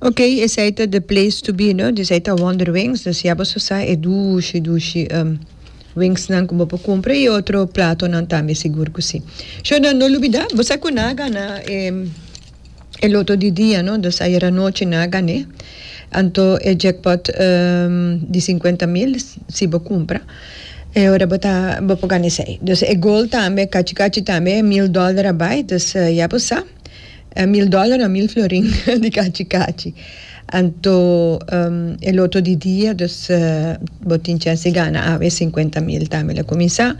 Ok esei ta the place to be no disei ta wonder wings no siabo su sa e dushi dushi wings nan ku bo por kumpra i otro platonan tambe sigur ku si sho nan no lubida bo sa ku nan a gana e loto di dia no dus ayer anochi nan a gan'e anto e jackpot di sinkuenta mil si bo kumpra e ora bo ta bo por gana esei dus e gold tambe kachi kachi tambe mil dòler a bai dus ya bo sa. E mil dòler a mil florin di kachi kachi. Anto e loto di dia, dus bo tin chèns di gana awe e sinkuenta mil tambe lo kuminsá.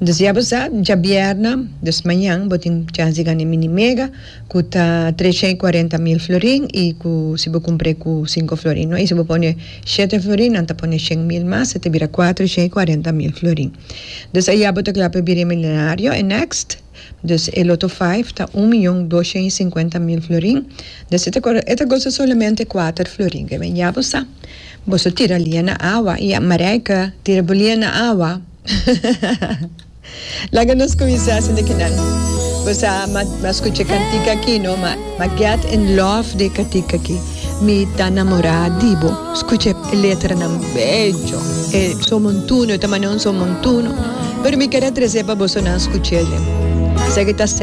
Dus ya bo sa, djabièrnè, dus mañan, bo tin chèns di gana e mini mega ku ta tresha i kuarenta mil florin i ku si bo kumpr'é ku sinku florin no. I si bo pone shete florin nan ta pone shen mil mas, e ta bira kuatrusha i kuarenta mil florin. Dus ayá bo ta kla pa bira e milenario, e next. Dus e loto vijf ta un miyon dosha i sinkuenta mil florin. Des e ta kora, e ta gosa solamente kuater florin. Ke men ya bo sa. Boso tira lia na awa i a Marijke tira bo lia na awa. Laga nos kuminsá sinda kinan. Bo sa, bo a skucha e kantika aki no, ma. Ma get in love de katika aki. Mi ta namorá di bo. Skucha e letranan becho. E somontuno, e ta mand'é un somontuno. Pero mi keda tres'é pa bosonan skuch'é. Esaki ta.